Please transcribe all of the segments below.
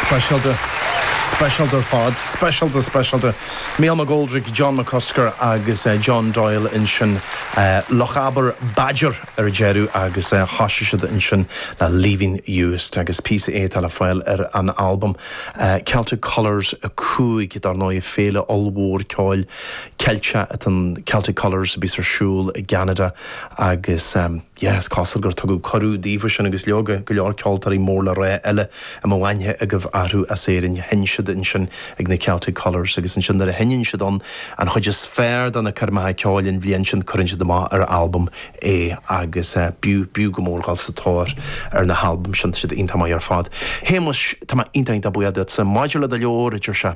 Speisialta, speisialta ar fad. Speisialta, speisialta. Mícheál McGoldrick, John McCusker agus John Doyle ansin, Lochaber Badger ar deireadh agus thosaigh siad ansin le Leaving Uist agus píosa é atá le fáil ar an albam Celtic Colours 5, dar ndóigh, féile ollmhór ceoil Ceilteach atá in Celtic Colours a bíos ar siúl i gCeanada agus. Yeah, is cosúil gur tugadh cuireadh daofa sin agus leoga, go leor ceoltóirí mór le rá eile a mbeadh aithne agaibh orthu as Éirinn. Sheinn siad ansin ag na Celtic Colours agus ansin nuair a sheinneann siad ann an chuid is fearr de na coirmeacha ceoil an bhliain sin cuireann siad amach ar albam é agus b'fhiú, b'fhiú go mór dhul sa tóir ar na halbaim sin, tá siad iontach maith ar fad. Shéamuis, tá mé iontach iontach buíoch duitse. Maidir le do leabhar, a deir sé.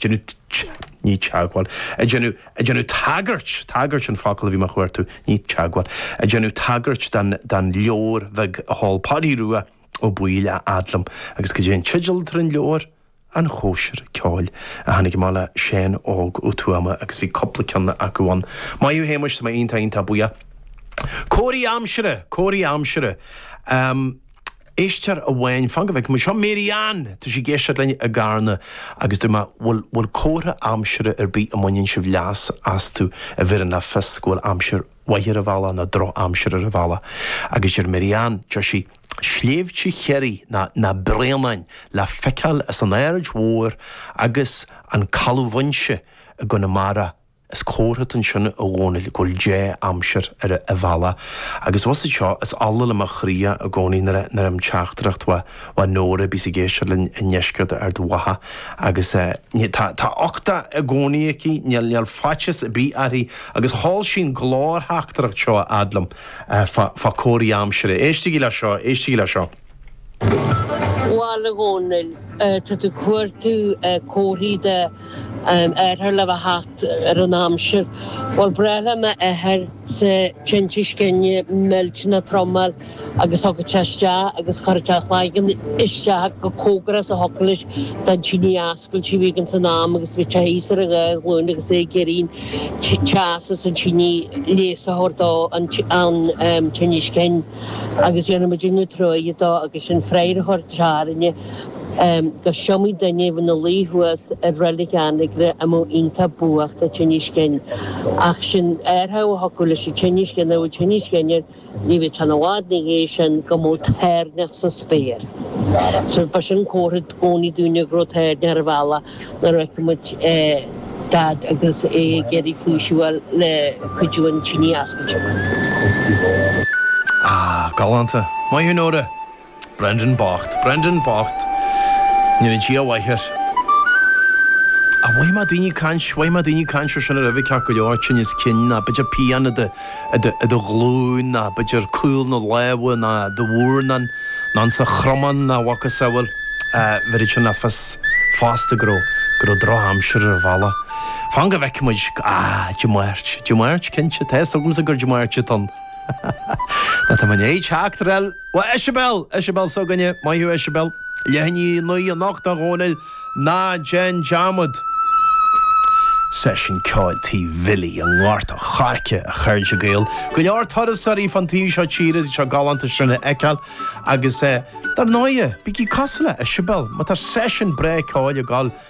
déanamh teagmháil, déanamh, déanamh tagairt, tagairt an focal a bhí mé a chuartú, ní teagmháil, déanamh tagairt don, don leabhar bheag a sheol Páidí Rua Ó Baoill a fhad liom agus cad é an teideal atá ar an leabhar? An Chóisir Ceoil a tháinig amach le Seán Óg Ó Tuama agus bhí cúpla ceann acu ann. Maith thú Shéamuis, tá mé iontach iontach buíoch. Comharthaí aimsire, comharthaí aimsire. Éisteoir amháin, fan go bhfeicfidh mé seo, Mary Ann! Tá sí ag éisteacht linn i gCarna agus dúirt mé, bhuel, bhfuil comharthaí aimsire ar bith a mbaineann sibh leas astu a bheireann le fios go bhfuil aimsir mhaith ar an bhealach nó droch-aimsir ar an bhealach? Agus deir Mary Ann, deir sí, sléibhte Chiarraí na, na Bréanainn le feiceáil as an Aird Mhór agus an Caladh Mhaínse i gConamara. Is comhartha atá ansin, a Dhónaill, go bhfuil dea-aimsir ar an bhealach. Agus bhfuil a fhios agat seo, is ola le mo chroí é i gcónaí nuair a gheibhim teachtaireacht uaidh, uaidh Nóra a bhíos ag éisteacht linn i ndeisceart Ard Mhacha. Agus ní, tá, tá uchtach i gcónaí aici, níl, níl faitíos ar bith uirthi, agus chuir sí an glórtheachtaireacht seo a fhad liom, fá, fá comharthaí aimsire. Éistigí le seo, éistigí le seo. Bhuel, a Dhónaill, tá tú ag cuartú comharthaí d'athrach le bheith ag teacht ar an aimsir. Bhuel, ba ghnách le m'athairsa tinneas cinn millteanach trom a fháil agus thigeadh sé isteach agus chuireadh sé a chloigeann isteach chomh cóngarach is a thiocfadh leis don tine fhos. cailte a bhí againn insan am agus bhíodh sé thíos ar a dhá ghlúin agus é ag iarraidh an teas as an tine leigheas a thabhairt dó ón tinneas cinn agus dhéanfadh muid an-truaighe dó agus sin an freagra a thabharfadh sé orainne go s'iomaí duine a bhí ina luí thuas i Reilig Anagaire a bheadh iontach buíoch de thinneas cinn ach sin athrach a thiocfadh leis an tinneas cinn nuair a bheadh tinneas cinn air Ní bheadh sé i bhfad ina dhiaidh sin go mbeadh toirneach sa spéir. Ba sin an comhartha i gcónaí dúinne go raibh toirneach ar an bhealach nuair a fheicfeadh muid Daid agus é ag iarraidh faoiseamh a fháil le cuidiú an tine a oscailt. Ah, galánta. Maith thú Nóra. Brendan bocht. Brendan bocht. Ní raibh dóigh mhaith air. Ach mhothaigh mé daoine ag caint, mhothaigh mé daoine ag caint ar sin roimhe ceart go leor, tinneas cinn ná b'fhéidir pian i do ghlúin ná b'fhéidir caol na lámha ná i do mhurnán ná ins an chromán ná a mhacasamhail. Bheireadh sin le fios fosta go raibh, go raibh drochaimsir ar an bhealach. Fan go bhfeice muid, ah, Dia Máirt, Dia Máirt cinnte, tá fhios agamsa gur Dia Máirt atá ann. Ná tá mé i ndiaidh teacht ar. Bhuel, Eisibeil! Eisibeil s'againne! Maith thú, Eisibeil. Leath i ndiaidh a naoi anocht, a Dhomhnaill. Ná déan dearmad! Seisiún ceoil tigh Bhilly i nGort an Choirce, a chairde Gael. Go leor turasóirí fán taobh seo tíre ag seo galánta sin a fheiceáil agus dar ndóighe, bígí cosúil le Eisibeil, má tá seisiún breá ceoil ag dul!